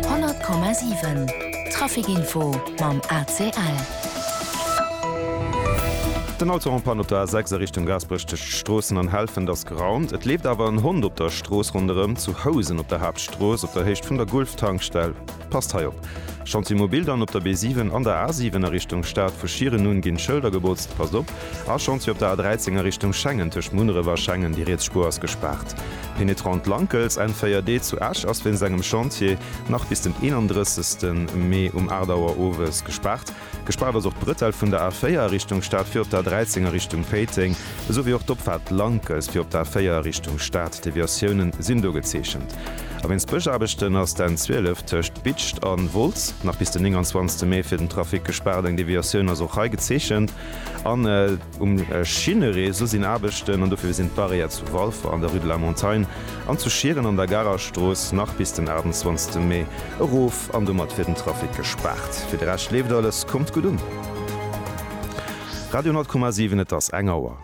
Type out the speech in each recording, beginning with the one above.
100,7 Traficinfo mam ACL. Den Auto en panne op der A6 a Richtung Gaasperech tëscht Stroossen an Helfent ass geraumt. Et leeft awer en Hond op der Strooss ronderëm zu Housen op der Haaptstrooss op der Héicht vun der Gulf-Tankstell. Passt hei op! Chantier mobil dann op der B7 an der A7 a Richtung Stad, vu Schieren un ginn d'Schëlder gebotzt, passt op! A Chantier op der A13 a Richtung Schengen, tëscht Munneref a Schengen, déi riets Spuer ass gespaart. Penetrant Lankels, N4D zu Esch ass wéinst engem Chantier nach bis den 31. Mee um 8 Auer owes gespaart. Gespaart ass och d'Brëtell vun der A4 a Richtung Stad fir op der 13 a Richtung Péiteng, esou wéi och d'Opfaart Lankes fir op der A4 a Richtung Stad. Deviatioune sinn do gezeechent. A wéinst Bëschaarbechten ass d'N 12 tëscht Bitscht a Wolz nach bis den 29 Mee fir den Trafic gespaart. Eng Deviatioun ass och hei gezeechent. Um Schinnereseau sinn Aarbechten an dofir sinn d'Barrière zu Walfer an der Rue de la Montagne an zu Schieren an der Garer Strooss nach bis den 28 Mee erof an domat fir den Trafic gespaart. Fir de Rescht leeft alles, kommt gutt un! Radio 10,7 Et ass eng Auer.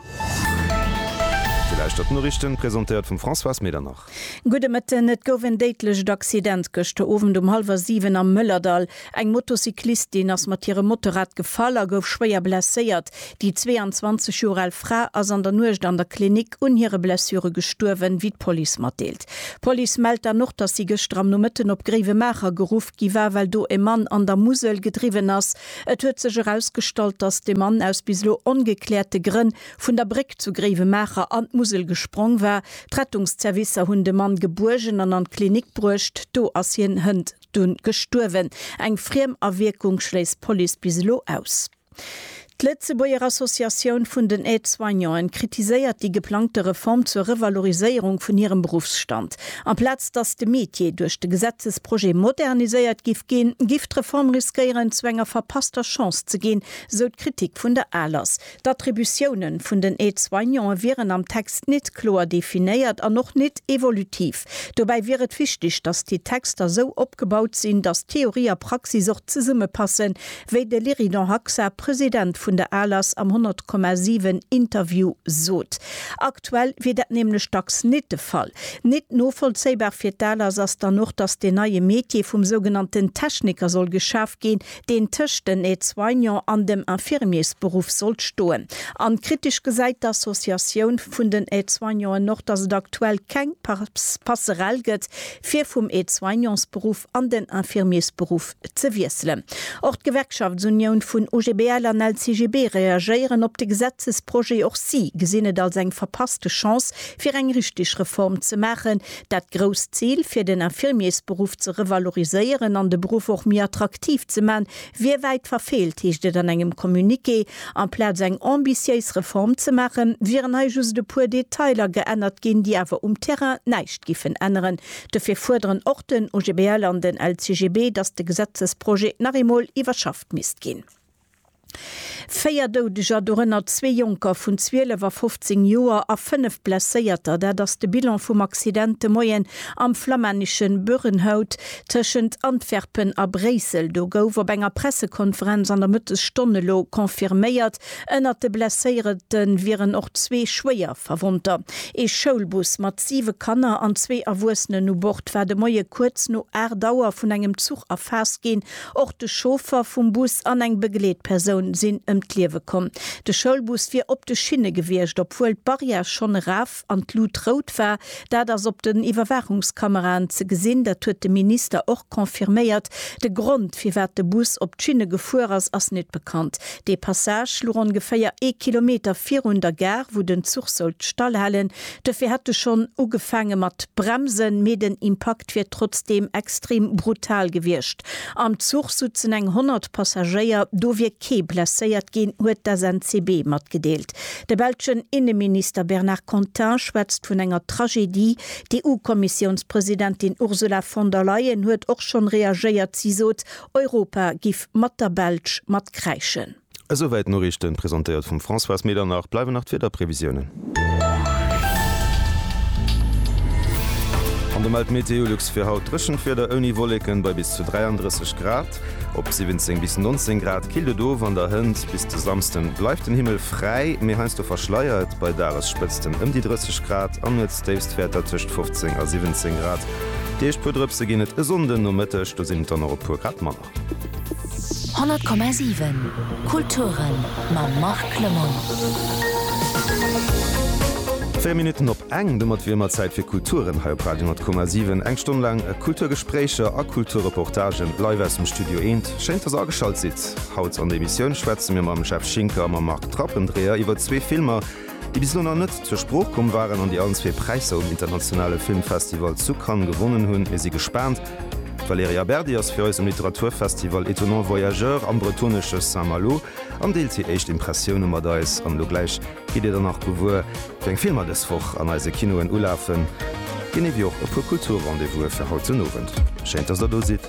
Dir lauschtert d'Noriichten, presentéiert vum Françoise Medernach. Gudde Mëtten, Et gouf en déidlecht Accident gëschter Owend um hallwer 7 am Mëllerdall. Eng Motocyclistin ass mat hirem Motorrad gefall a gouf schwéier blesséiert. Déi 22 Joer al Fra ass an der Nuecht an der Klinik un hire Blessure gestuerwen, wéi d'Police matdeelt. D'Police mellt dann och, datt si gëschter am Nomëtten op Gréiwemaacher geruff gi war, well do e Mann an der Musel gedriwwen ass. Et huet sech erausgestallt, datt de Mann aus bis elo ongekläerte Grënn vun der Bréck zu Gréiwemaacher an d'Musel gesprong war. D'Rettungszervicer hunn de Mann gebuergen an an d'Klinik bruecht. Do ass hien hënt dunn gestuerwen. Eng friem Awierkung schléisst d'Police bis elo aus. D'Lëtzebuerger Associatioun vun den Aide-soignanten kritiséiert déi geplangte Reform zur Revaloriséierung vun hirem Beruffsstand. Amplaz datt de Metier duerch de Gesetzesprojet moderniséiert giff ginn, giff d'Reform riskéieren, zu enger verpasster Chance ze ginn, sou d'Kritik vun der ALAS. D'Attributiounen vun den Aide-soignanten wieren am Text nit kloer definéiert an och nit evolutiv. Dobäi wier et wichteg, dass déi Texter esou opgebaut sinn, dass Theorie a Praxis och zesummepassen, wéi de Lyridon Haxa, President vun der ALAS, am 100,7 Interview sot. Aktuell wier dat nämlech dacks nit de Fall. Nit novollzéibar fir d'ALAS ass dann och, dass deen neie Metier vum sougenannten Techniker soll geschaf ginn, deen tëscht den Aide-soignants an dem Infirmiersberuff sollt stoen. An kritesch gesäit d'Associatioun vun den Aide-soignanten och, datt et aktuell keng Passerelle gëtt, fir vum Aide-soignementsberuff an den Infirmiersberuff ze wiesselen. Och d'Gewerkschaftsunioun vun OGBL an LCGB reagéieren op de Gesetzesprojet. Och si gesinn et als eng verpasste Chance, fir eng richteg Reform ze maachen, Dat grousst Zil, fir den Infirmiersberuff ze revaloriséieren an de Beruff och méi attraktiv ze man, wier wäit verfeelt, heescht et an engem Communiqué. Amplaz eng ambitiéis Reform ze maachen, wieren hei just e puer Detailer geännert ginn, déi awer um Terrain näischt giffen änneren. Dofir fuerderen och den OGBL an den LCGB, datt de Gesetzesprojet nach eemol iwwerschafft misst ginn. Véier Doudeger, dorënner zwee Jonker vun 12 a 15 Joer a fënnef Blesséierter, dat ass de Bilan vum Accident de Moien am flammänneschen Bürrenhout tëschent Antwerpen a Bréissel. Do gouf op enger Pressekonferenz an der Mëttesstonn elo confirméiert, ënnert de Blesséierete wieren och zwee Schwéierverwonnter. Ee Schoulbus mat siwe Kanner an zwee Erwuessenen u Bord war de Moie kuerz no 8 Auer vun engem Zuch erfaasst ginn, Och de Chauffer vum Bus an eng Begleetpersoun sinn ëm d'Liewe komm. De Schoulbus wier op de Schinne gewiescht, obwuel d'Barrière schonn eraf an d'Lut rout war. Dat ass op den Iwwerwaachungskameraen ze gesinn. Dat huet de Minister och confirméiert. De Grond, firwat de Bus op d'Schinne gefuer ass, ass net bekannt. Dee Passage luch ongeféier ee Kilometer virun der Gare, wou den Zuch sollt stallhalen. Duerfir hätt e schonn ugefaange mat bremsen, mee den Impakt wier trotzdeem extrem brutal gewiescht. Am Zuch sutzen eng 100 Passagéier, do wier kee blesséiert ginn, huet d'SNCB matgedeelt. De belschen Inneminister Bernard Contin schwätzt vun enger Tragedie. D'EU-Kommissiounspresidentin Ursula von der Leyen huet och schonn reagéiert. Si sot, Europa giff mat der Belsch matkräischen. Esouwäit d'Noriichten, presentéiert vum Françoise Medernach. Bleiwen nach d'Wiederprevisiounen. An do mellt Meteolux fir haut dréchent Wieder ouni Wolleken bei bis zu 33 Grad. Op 17 bis 19 Grad killt et of an der Hënt. Bis de Samsden bleift den Himmel fräi, mee heiansdo verschleiert bei Dagesspëtzten ëm déi 30 Grad an Nuetsdéifstwäerter tëscht 15 a 17 Grad. Déi éischt puer Drëpse ginn et e Sonndënomëtteg, do sinn et dann och e puer Grad manner. 100,7 Kulturen mam Marc Clement. 4 Minutten op eng, domat wier ëmmer Zäit fir Kulturen hei op Radio 10,7. Eng Stonn laang Kulturgespréicher a Kulturreportagen live aus dem Studio Eent. Schéin, dass der ageschalt sidd. Haut an der Emissioun schwätze mir mam Jeff Schinker a mam Marc Trappendreher iwwer zwee Filmer, déi bis elo nach net zur Sprooch komm waren an déi allen zwee Präisser um internationale Filmfestival zu Cannes gewonnen hunn. Mir si gespaant. D'Valerija Berdi ass fir eis um Literaturfestival Étonnants Voyageurs am bretonesche Saint-Malo an deelt hir éischt Impressioune mat eis. An elo gläich gitt Dir dann nach gewuer, wéi eng Filmer dës Woch an eise Kinoen ulafen, genee wéi och e puer Kultur-Rendez-vouse fir haut den Owend. Schéin, dass Der do sidd!